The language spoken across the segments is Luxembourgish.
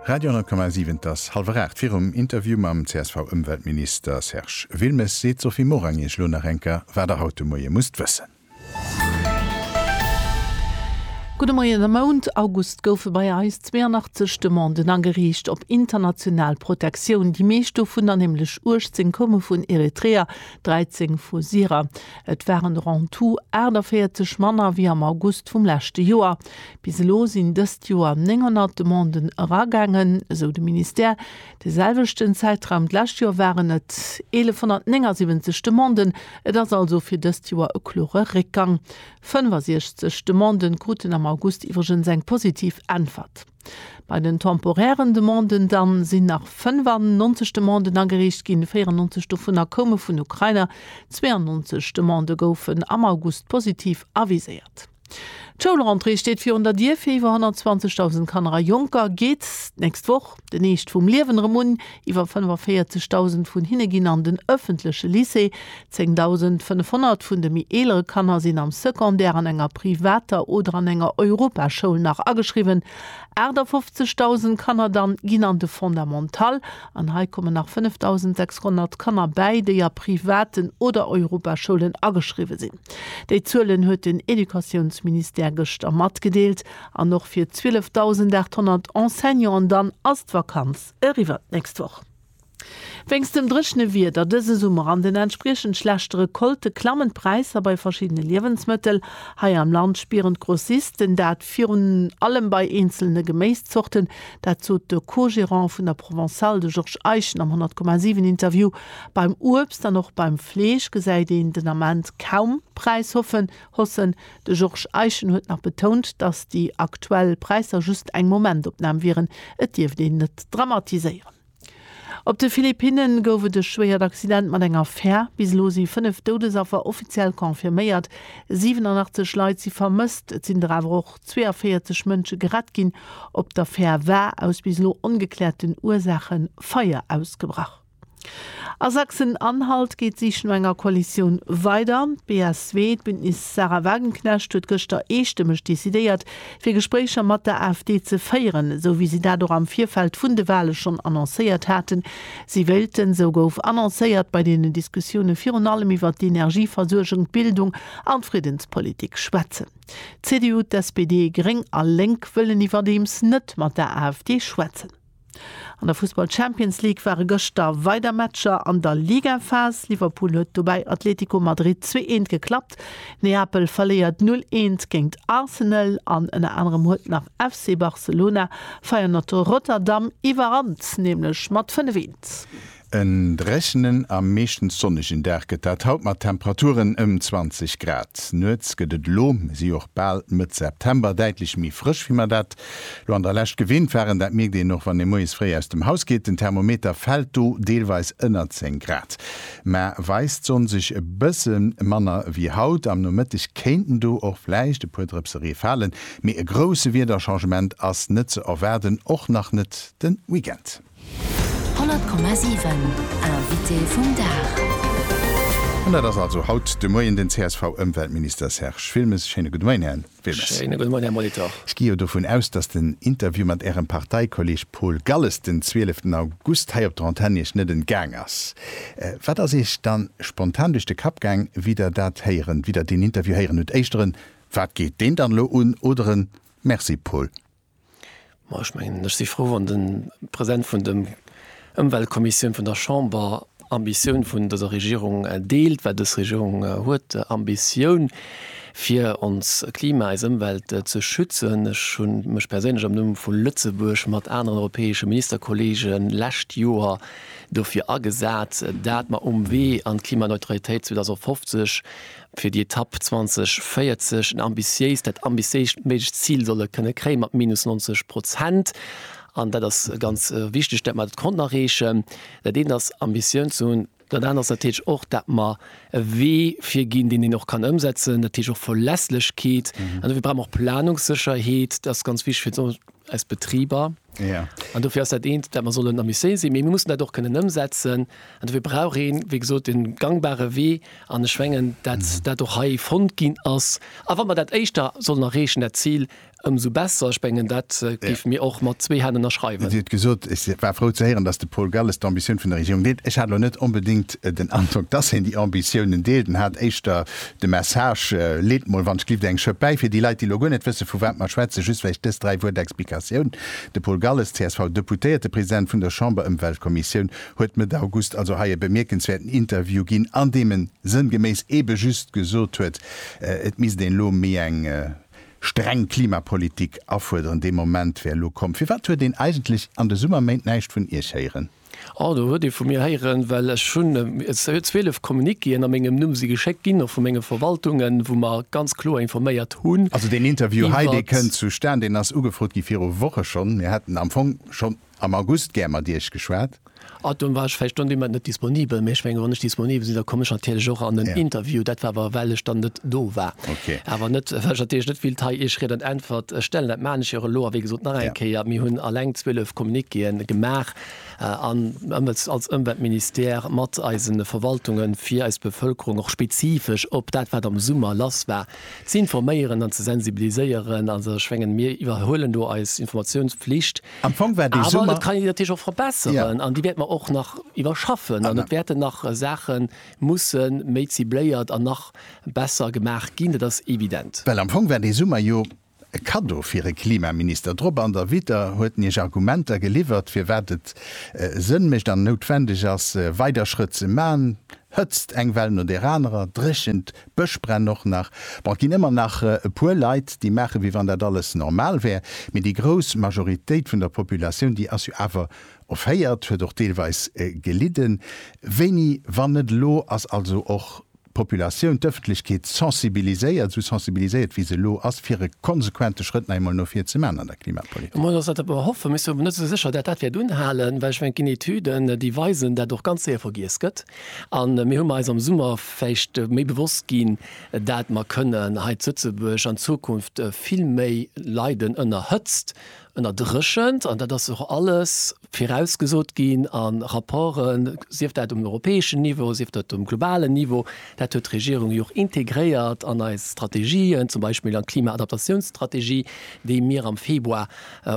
Radio 10,7 Et ass hallwer 8. Virum Interview mam CSV-Ëmweltminister Serge Wilmes seet d'Sophie Morang Iech lo nach eng Kéier, wat Der haut de Moie musst wëssen. Gudde Moien. Am Mount August goufe bei eis 82 Demanden agereecht op international Protektioun. Déi meescht dovunner, nämlech 18, koume vun Eritreer, 13 vu Syrer. Et waren der en tout 48 manner wéi am August vum leschte Joer. Bis elo sinn dëst Joer 900 Demanden eragaangen, esou de Ministère. De selwechten Zäitraum d'lescht Joer waren et 1179 Demanden. Et ass also fir dëst Joer e klore Réckgang. 65 Demanden kruten am August iwwregens eng positiv Äntwert. Bei den temporären Demanden da sinn nach 95 Demanden agereecht ginn, 94 dovunner koume vun Ukrainer. 92 Demande goufen am August positiv aviséiert. D'Schoulrentrée steet virun der Dier. Fir iwwer 120.000 Kanner a Jonker geet d'nächst Woch den Eescht vum Liewen erëm un. Iwwer 45.000 vun hinne ginn an den ëffentleche Lycée. 10.500 vun de méi eelere Kanner sinn am Secondaire an enger privater oder an enger Europaschoul nach ageschriwwen. 58.000 Kanner dann ginn an de Fondamental. An hei kommen nach 5.600 Kanner bäi, déi a privaten oder Europaschoulen ageschriwwe sinn. Déi Zuelen huet den Educatiounsministère gëschter matgedeelt. An och fir 12.800 Enseignant an dann ass d'Vakanz eriwwer. D'nächst Woch wéinst dem dréchene Wieder dëse Summer an den entspriechend schlechte Recolte klammen d'Präisser bei verschiddene Liewensmëttel. Hei am Land spieren d'Grossisten dat virun allem bei eenzelne Geméiszorten. Dat sot de Co-Gerant vun der Provençale, de Georges Eischen am 100,7 Interview Beim Uebst an och beim Fleesch gesäit een den Ament kaum Präishossen. De Georges Eischen huet nach betount, datt déi aktuell Präisser just eng Momentopnam wieren, et dierft een net dramatiséieren. Op de Philippinne gouf et e schwéiert Accident mat enger Fär. Bis elo si 5 Doudesaffer offiziell confirméiert. 87 Leit si vermësst. Et sinn der awer och 42 Mënsche gerett ginn. Op der Fär war aus bis elo ongekläerten Ursaache Feier ausgebrach. A Sachsen-Anhalt geet d'Sich no enger Koalitioun weider. D'BSW, d'Bündnis Sarah Wagenknecht, huet gëschter eestëmmeg decidéiert, fir Gespréicher mat der AfD ze féieren, esou wéi si dat och am Virfeld vun de Wale schonn annoncéiert haten. Si wéilten, sou gouf annoncéiert, bei deenen Diskussioune virun allem iwwer d'Energieversuergung, d'Bildung an d'Friddenspolitik schwätzen. D'CDU, d'SPD, Gréng a Lénk wëllen iwwerdeems net mat der AfD schwätzen. An der Fussball Champions League ware gëschter weider Matcher an der Ligaphas. Liverpool huet dobäi Atletico Madrid zweeent geklappt, Neapel verléiert null eent géingt Arsenal an ënner anerem huet nach FC Barcelona Feyenoord Rotterdam iwwerrannt, nämlech mat fënnef eent. En dréchenen a meeschtens sonnegen Dag gëtt dat haut mat Temperaturen ëm 20 Grad. Nuets gëtt et elo, mir si jo och bal Mëtt September, däitlech méi frësch wéi mer dat elo an der Lescht gewinnt waren. Dat mierkt een och wann ee moies fréi aus dem Haus geet, den Thermometer fält do deelweis ënner 10 Grad. Mä weist d'Sonn sech e bësse manner wéi haut, am Nomëtteg kéinten do och vläicht e puer Drëpse Ree falen, mee e grousse Wiederchangement ass net ze erwaarden, och nach net den Weekend. 100,7 Invité vum Dag. An dat ass also haut de Moien den CSV-Ëmweltminister Serge Wilmes. Schéine gudde Moien, Här Wilmes. Schéine gudde Moien, Här Molitor. Ech gi jo dovun aus, datt den Interview mat Ärem Parteikolleeg Paul Galles den 12 ten August hei op der Antenn Iech net entgaang ass. Wat ass Iech da spontan duerch de Kapp gaang, wéi Der dat héieren, wéi Der deen Interview héieren hutt? Éischteren, Wat geet deen dann elo un? Oder en, Merci, Paul. Ma ech mengen, ech si frou, wann de President vun dem Ëmweltkommissioun vun der Chamber Ambitioun vun dëser Regierung deelt, well dës Regierung huet Ambitioun, fir ons Klima, eis Ëmwelt ze schützen. Ech hu mech perséinlech am Numm vu Lëtzebuerg mat aneren europäesche Ministerkolleege lescht Joer dofir agesat, dat mer um Wee an d'Klimaneutralitéit 2050 fir déi Etapp 2040 en ambitiéist, dat ambitiéist méiglechst Zil solle kënne kréie mat minus 90 Prozent. An dat ass ganz wichteg, dat mer dat konnten erreechen. Dat eent ass, Ambitioun ze hunn. Dat anert ass natierlech och, dat mer e Wee virginn, deen een och kann ëmsetzen, dat heescht och Verlässlechkeet. An dofir brauche mer och Planungssécherheet, dat ass ganz wichteg, fir eis Betriber. An dofir ass dat eent, dat mer sollen ambitiéis sinn, mee mir mussen dat och kënnen ëmsetzen. An dofir brauch een, wéi gesot, de gangbare Wee. An ech mengen, datt dat och hei fonnt ginn ass. A wa mer dat éischter sollen erreechen, dat Zil, ëmsou besser. Ech mengen, dat géife mir och mat zwee Hänn ënnerschreiwen. Dir hutt gesot, ech war frou ze héieren, datt de Paul Galles d'Ambitioun vun der Regierung deelt. Ech hat elo net onbedéngt den Androck, datt hien déi Ambitiounen deelt. En hat éischter De Message leet mol, wann ech glift, eng Schëpp bäi fir déi Leit, déi elo guer net wësse vu wat mer schwätzen, just vläicht dës dräi Wuert Explikatioun, De Paul Galles, csv, Deputéierte President vun der Chamberëmweltkommissioun, huet Mëtt August also hei e bemierkenswäerten Interview ginn, an deem en sënngeméiss ebe just gesot huet, et misst een elo méi eng streng Klimapolitik afuerderen, dee Moment wär elo komm. Firwat huet een eigentlech an de Summerméint näischt vun Iech héieren? Oh, do huet ee vu mir héieren, well ech hunn et jo 12 Communiquéen a mengem Numm si geschéckt ginn, och vu menge Verwaltungen, wou mer ganz kloer informéiert hunn. Also deen Interview hei, dee kënnt zustan, deen ass ugefrot gi viru Woche schonn. Mir hätten am Fong schonn am August gär mat Iech geschwat. Ah, dann war ech vläicht den Ament net disponibel, mä ech menge wann ech disponibel sinn, da kommen ech natierlech och an en Interview. Dat war awer, well ech dann net do war. Awer net, well ech natierlech net wéilt hei Iech Ried an Äntwert stellen. Dat maachen ech jo och elo. A wéi gesot, nach eng Kéier, Mir hunn alleng 12 Communiquéë gemaach an Ëmwelt, als Ëmweltministère, mat eise Verwaltungen, fir eis Bevëlkerung och spezifesch op dat, wat am Summer lass war, ze informéieren an ze sensibiliséieren. Also ech mengen, mir iwwerhuelen do eis Informatiounspflicht. Awer et kann een déi natierlech och verbesseren an déi wäerte mer och nach iwwerschaffen. An et wäerten nach Saachen musse méi cibléiert an nach besser gemaach ginn, dat ass evident. Well am Fong war dee Summer jo e Kaddo fir e Klimaminister. Drop an der Vita huet en Iech Argumenter geliwwert, firwat et Sënn mécht an noutwendeg ass, weider Schrëtt ze man. Hëtzt, eng Well no där anerer, Dréchent, Bëschbränn och nach. Bon, et ginn ëmmer nach e puer Leit, déi maachen, wéi wann dat alles normal wär, mee déi grouss Majoritéit vun der Populatioun, déi ass jo awer Offéiert, huet och deelweis gelidden. Wéini, wann net elo? Ass also och d'Populatioun, d'Ëffentlechkeet sensibiliséiert, esou sensibiliséiert wéi se elo ass, fir e konsequente Schrëtt nach eemol no vir ze maachen an der Klimapolitik? Mol ass dat awer hoffen. Mir si awer net esou sécher, dat dat wäert unhalen, well ech mengen, et ginn Etüden, déi weisen, dat och ganz séier vergiess gëtt. A mir hu mer eis am Summer vläicht méi bewosst ginn, dat mer kënnen hei zu Lëtzebuerg an Zukunft vill méi leiden ënner Hëtzt, Ënnerdréchent, an dat ass och alles virausgesot ginn a Rapporten, sief dat um europäeschen Niveau, sief dat um globalen Niveau, dat huet d'Regierung jo och integréiert an eis Strategien, zum Beispill an d'Klima-Adaptatiounsstrategie, déi mir am Februar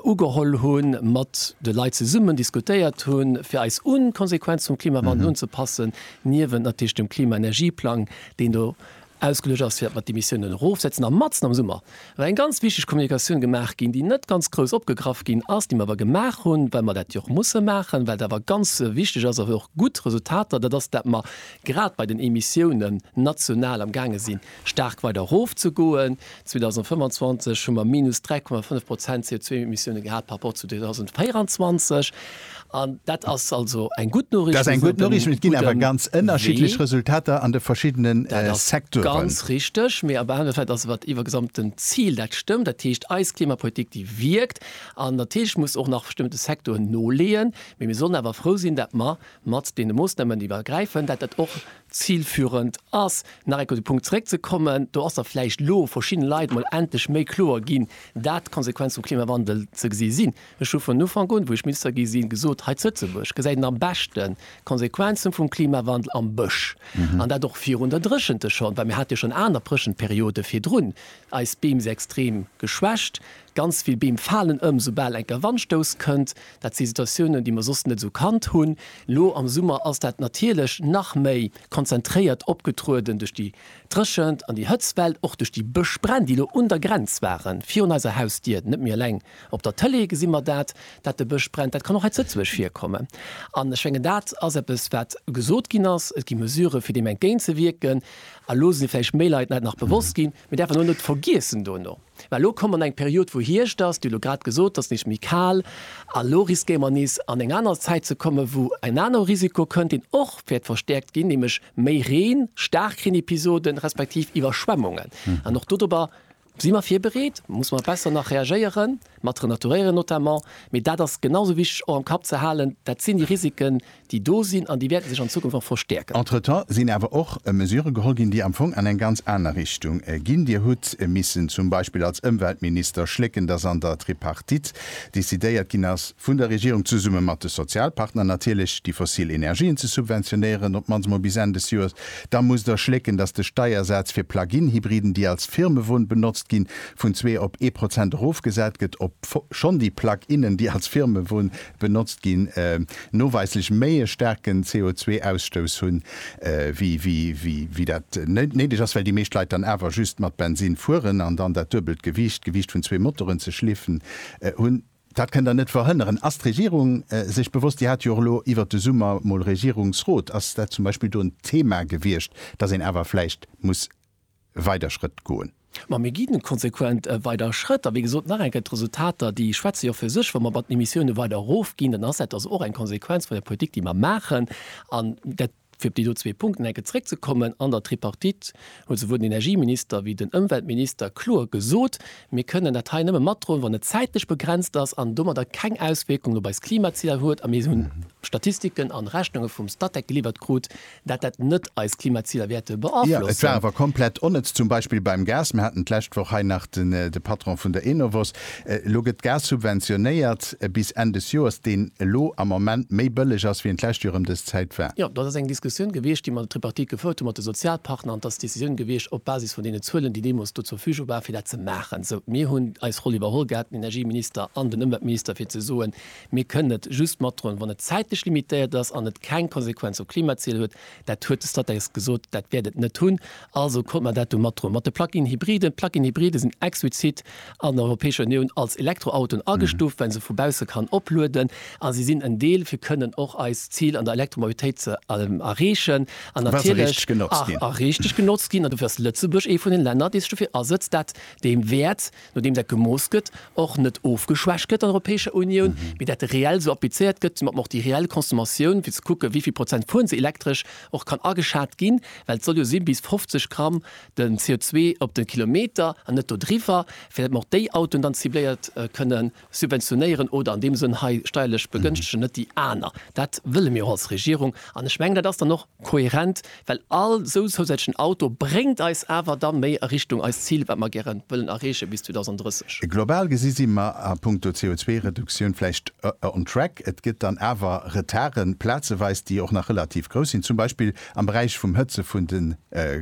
ugeholl hunn, mat de Leit zesummen diskutéiert hunn, fir eis un d'Konsequenz vum Klimawandel unzepassen, niewent natierlech dem Klima-Energieplang, deen do ausgeluecht ass fir datt mer d'Emissiounen erofsetzen a matzen am Summer war eng ganz wichteg Kommunikatioun gemaach ginn, déi net ganz grouss opgegraff ginn ass, déi mer awer gemaach hunn, well mer dat jo och musse maachen, well dat awer ganz wichteg ass a wou och gutt Resultater, dat ass dat mer grad bei den Emissiounen national amgaange sinn staark weider erofzegoen. 2025 hu mer minus 3,5 Prozent CO2-Emissioune gehat par rapport zu 2024, an dat ass also eng gutt Noriicht. Dat ass eng gutt Noriicht, mee et ginn awer ganz ënnerschiddlech Resultater an de verschiddene Secteuren. Dat ass ganz richteg, mee am Endeffekt ass wat iwwer gesamten Zil, dat stëmmt. Dat heescht, eis Klimapolitik, déi wierkt, an natierlech muss och nach bestëmmte Secteuren noleeën, mee mir sollen awer frou sinn, datt mer mat deene Moossnamen, déi mer ergräifen, datt dat och Zilführend ass, nach eng Kéier op de Punkt zeréckzekommen, do ass da vläicht elo verschidden Leit mol endlech méi kloer ginn, dat d'Konsequenz vum Klimawandel ze gesi sinn. Ech hu vun Ufank un, wou ech Minister gi sinn, gesot, hei zu Lëtzebuerg gesäit een am beschten d'Konsequenzen vum Klimawandel am Bësch. An dat och virun der Dréchente schonn, well mir hate jo schonn aner Dréchentperiode virdrun. Eis Beem si extrem geschwächt, ganz vill Beem falen ëm, soubal enker Wandstouss kënnt. Dat si Situatiounen, déi mer soss net esou kannt hunn. Elo am Summer ass dat natierlech nach méi konzentréiert opgetrueden duerch déi Dréchent an déi Hëtztwell, och duerch déi Bëschbränn, déi elo un der Grenz waren, virun eiser Hausdier. Net méi eleng op der Tëlee gesi mer dat, dat de Bësch brennt. Dat kann och hei zu Lëtzebuerg virkommen. An ech mengen, dat ass eppes, wat gesot ginn ass. Et gi Mesurë fir deem entgéintzewierken. Elo si vläicht méi Leit dat nach bewosst ginn. Mir däerfen awer net vergiessen, dono, Well elo komme mer an eng Period, wou Hierscht ass, du elo grad gesot, et ass nees méi kal, an elo riskéiere mer nees an eng aner Zäit ze kommen, wou en anere Risiko kënnt, deen och wäert verstäerkt ginn, nämlech méi Reen, Staarkreenepisoden, respektiv Iwwerschwemmungen. An och dodrëber si mer virbereet, musse mer besser nach reagéieren, mat renaturéieren notamment, mee dat ass genau esou wichteg och am Kapp ze halen, dat sinn déi Risiken, déi do sinn an déi wäerte sech an Zukunft och verstäerken. Entretemps sinn awer och Mesurë geholl ginn, déi am Fong an eng ganz aner Richtung ginn. Dir hutt missen zum Beispill als Ëmweltminister schlécken, dass an der Tripartite decidéiert ginn ass, vun der Regierung zesumme mat de Sozialpartner natierlech, déi fossil Energien ze subventionéieren, op d'mannst emol bis Enn des Joers. Da musst Der schlécken, dass de Steiersaz fir Plug-in-Hybriden, déi als Firmewon benotzt ginn, vun zwee op ee Prozent erofgesat gëtt, op schonn déi Plug-inen, déi als Firmewon benotzt ginn, noweislech méi e staarken CO2-Ausstouss hunn, wéi dat néideg ass, well déi meescht Leit dann awer just mat Bensinn fueren an dann dat duebelt Gewiicht, d'Gewiicht vun zwee Motoren ze schleefen hunn. Dat kënnt Der net verhënneren. Ass d'Regierung sech bewosst, Dir hat jo och elo iwwert de Summer mol Regierungsrot, ass dat zum Beispill do en Thema gewiescht, dass een awer vläicht muss, weider Schrëtt goen. Ma mir ginn konsequent weider Schrëtt. A wéi gesot, nach eng Kéier, d'Resultater, déi schwätze jo fir sech. Wa mer mat den Emissioune weider erofginn, dann ass dat also och eng Konsequenz vun der Politik, déi mer maachen. An dat, fir op déi do zwee Punkten enke zréckzekommen, an der Tripartite hu souwuel den Energieminister wéi den Ëmweltminister kloer gesot, Mir kënnen dat hei nëmme matdroen, wann et zäitlech begrenzt ass an domadder keng Auswierkungen op eis Klimaziler huet. A mir hunn Statistiken an Rechnunge vum Statec geliwwert krut, dat dat net eis Klimaziler wäerte beaflossen. Jo, et war awer komplett onnëtz, zum Beispill beim Gas. Mir haten d'lescht Woch hei nach de Patron vun der Enovos. Elo gëtt d'Gas subventionéiert bis Enn des Joers, deen elo am Moment méi bëlleg ass, wéi en d'lescht Joer ëm dës Zäit war. Jo, dat ass eng Diskussioun gewiescht, déi mer an der Tripartite gefouert hunn, mat de Sozialpartner. An et ass d'Decisioun gewiescht op Basis vun deenen Zuelen, déi deemools do zur Verfügung waren, fir dat ze maachen. Sou, mir hunn eis Roll iwwerholl gehat, den Energieminister an den Ëmweltminister, fir ze soen, Mir kënnen et just matdroen, wann et zäitlech limitéiert ass an et keng Konsequenz op d'Klimaziel huet. Dat huet de Statec gesot, dat wäert et net hunn. Also konnt mer dat do matdroen. Mat de Plug-in-Hybriden, d'Plug-in-Hybride sinn explizit an der Europäescher Unioun als Elektroautoen agestuuft, well een se vu bausse kann oplueden a se sinn en Deel, fir kënnen och eist Zil an der Elektromobilitéit ze erreechen. An natierlech. A richteg genotzt ginn. A richteg genotzt ginn. An dofir ass Lëtzebuerg ee vun den Länner, dee sech dofir asëtzt, dat deem Wäert nodeem dat gemooss gëtt, och net ofgeschwächt gëtt an der Europäescher Unioun, mee dat reell esou applizéiert gëtt, soumat mer och déi reell Consommatioun, fir ze kucken, wéi vill Prozent fueren se elektresch, och kann ageschat ginn, well et soll jo si bis 50 Gramm de CO2 op de Kilometer an net dodriwwer, fir dat mer och déi Autoen dann cibléiert kënnen. subventionéieren oder an deem Sënn hei steierlech begënschtegen, net déi aner. Dat wëlle mir och als Regierung. An ech mengen, dat ass dann och kohärent, well all esou zousätzlechen Auto bréngt eis awer da méi a Richtung eist Zil, wat mer gäre wëllen erreeche bis 2030. Global gesi si mer a punkto CO2-Reduktioun vläicht on track. Et gëtt dann awer Retarde plazeweis, déi och nach relativ grouss sinn, zum Beispill am Beräich vum Hëtze vun de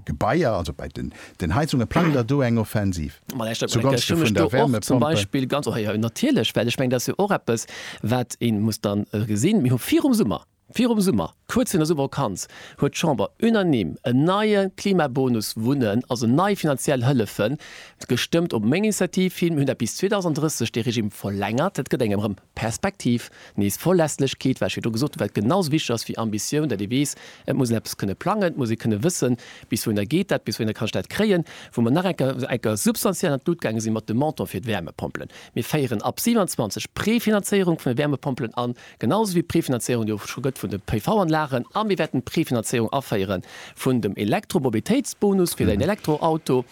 Gebaier, also bei den Den Heizunge plangt der do eng Offensiv zugonste vun der Wärmepompe? Natierlech, well ech mengen, dat ass jo och eppes, wat ee muss da gesinn. Mir hu virum Summer, virum Summer, kuerz virun der Summervakanz, huet d'Chamber unanime en neie Klimabonus Wunnen, also nei finanziell Hëllefen, gestëmmt op meng Initiativ hin. Mir hunn dat bis 2030 dee Regime verlängert. Dat gëtt engem erëm Perspektiv, nees Verlässlechkeet, wat ech virdu gesot hunn, wat genau sou wichteg ass wéi Ambitioun, dat ee weess, et muss een eppes kënne plangen, et muss ee kënne wëssen, bis wouhinner geet dat, bis wouhinner kann ech dat kréien. Wou mer nach eng Kéier substantiell an d'Lut gaange si mat de Montanten fir d'Wärmepompelen. Mir féieren ab 27 d'Prefinanzéierung vun de Wärmepompelen an, genau sou wéi d'Prefinanzéierung déi och scho gëtt vun de PV-Anlagen, a mir wäerten d'Prefinanzéierung aféiere vun dem Elektromobilitéitsbonus fir den Elektroauto,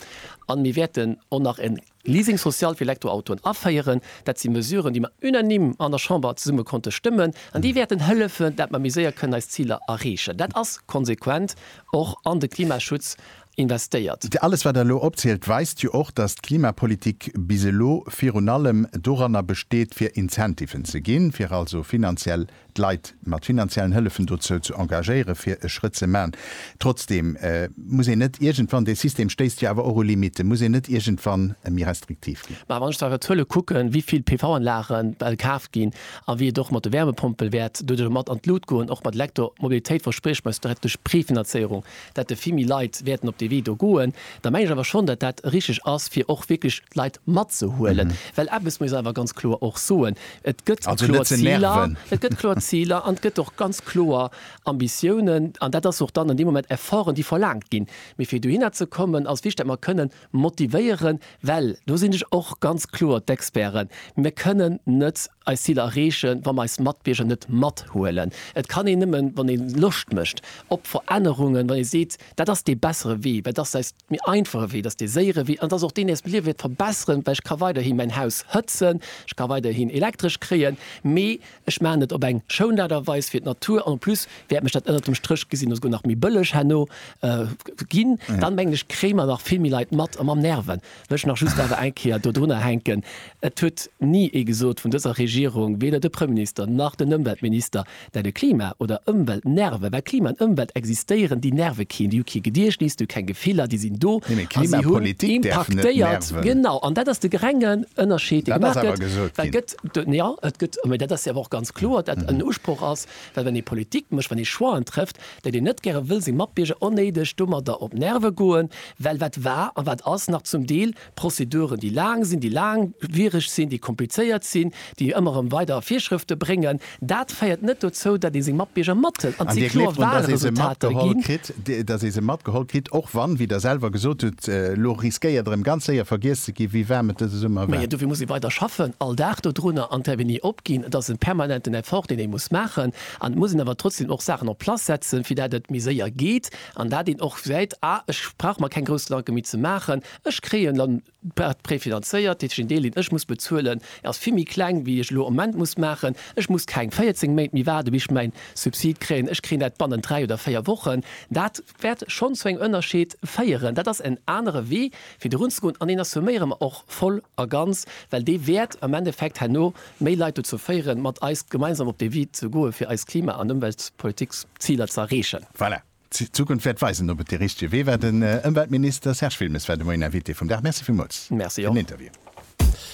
a mir wäerten och nach en Leasing social fir Elektroautoen aféieren. Dat si Mesuren, déi mer unanime an der Chamber zesumme konnte stëmmen an déi wäerten hëllefen, dat mer méi séier kënnen eis Ziler erreechen. Dat ass konsequent och an de Klimaschutz investéiert. Alles, wat Der elo opzielt, weist jo och, dass d'Klimapolitik bis elo virun allem doranner besteet, fir Incentiven ze ginn, fir also finanziell d'Leit mat finanziellen Hëllefen dozou ze engagéieren, fir e Schrëtt ze maachen. Trotzdeem, muss een net iergendwann, dee System stéisst jo awer och u Limitten, muss een net iergendwann méi restriktiv ginn? Mä wann ech da d'Zuele kucken, wéi vill PV-Anlage well kaaft ginn a wéi et och mat de Wärmepompel wäert doduerch mat an d'Lut goen, och mat Elektromobilitéit, versprieche mer eis do duerch d'Prefinanzéierung, datt do vill méi Leit wäerten op dee Wee do goen, da mengen ech awer schonn, datt dat richtig ass, fir och wierklech d'Leit matzehuelen. Well eppes muss een awer ganz kloer och soen, Et gëtt kloer Ziler, et gëtt kloer Ziler an et gëtt och ganz kloer Ambitiounen. An dat ass och dann an deem Moment Efforten, déi verlaangt ginn. Mee fir dohinner ze kommen, ass wichteg, datt mer kënne motivéieren, well do sinn ech och ganz kloer d'Experten, Mir kënnen net eis Ziler erreechen, wa mer eis Matbierger net mathuelen. Et kann een nëmmen, wann ee Loscht mécht op Verännerungen, wann ee seet, Dat ass dee bessere Wee, well et ass eis méi einfache Wee, et ass dee séiere Wee an et ass och deen, dee eist Liewe wäert verbesseren, well ech ka weiderhi mäin Haus hëtzen, ech ka weiderhin Elektresch kréien, mee ech maachen et op eng schoun Aart a Weis fir d'Natur an en plus wäert mech dat ënnert dem Stréch gesinn esouguer nach méi bëlleg herno ginn. Dann mengen ech kréie mer nach vill méi Leit mat a mam nerven Wëllt nach just awer eng Kéier do drunner hänken, Et huet ni ee gesot vun dëser Regierung, weder de Premierminister nach den Ëmweltminister, dat e Klima oder Ëmwelt nerve, well Klima an Ëmwelt existéieren, déi nerve keen, déi hu kee Gediechtnis, déi hu keng Gefiller, déi sinn do Nee, mee a si hunn Klimapolitik däerf net impaktéiert. nerven. Genau, an dat ass de grengen Ënnerscheed, dee Dat ass gemaach awer gëtt. gesot Dat ginn. gëtt, ja, et gëtt, mee dat ass jo awer och ganz kloer, dat en Usproch ass, Well wann ee Politik mécht, wann ee Choixen trëfft, déi een net gäre wëll, sinn Matbierger onnéideg domadder op d'Nerve goen, well wat war a wat ass nach zum Deel Prozeduren, déi laang sinn, déi laangwiereg sinn, déi komplizéiert sinn, déi ëmmer erëm weider Virschrëfte bréngen. Dat féiert net dozou, datt ee seng Matbierger mathëlt an datt si kloer Walresultater ginn. dass ee se matgeholl kritt, och wann, wéi Der selwer gesot hutt, elo riskéiert erëm ganz séier vergiess ze ginn, wéi waarm et dëse Summer war. Mee dofir muss ee weider schaffen, all Dag dodrunner an d'Avenue opginn. Et ass e permanenten Effort, deen ee muss maachen. An et muss een awer trotzdem och Saachen en place setzen, fir dat et méi séier geet an dat een och seet, Ah, ech brauch mer keng grouss Gedanke méi ze maachen, ech kréien dann, D'Part prefinanzéiert, dat heescht deen Deel, deen ech muss bezuelen, ass vill méi kleng, wéi ech elo am Moment muss maachen. Ech muss keng 14 Méint méi waarden, bis ech mäin Subsid kréien. Ech kréien dat bannent dräi oder véier Wochen. Dat wäert schonn zu engem Ënnerscheed féieren. Dat ass en anere Wee, fir do erunzegoen, an deen assuméiere mer och voll a ganz, well dee wäert am Endeffekt herno méi Leit dozou féieren, mat eis gemeinsam op dee Wee ze goen, fir eis Klima an Ëmweltpolitiksziler ze erreechen. Voilà, D'Zukunft wäert weisen, ob et dee richtege Wee war. Den Ëmweltminister Serge Wilmes war de Moien Invité vum Dag. Merci villmools fir den Interview.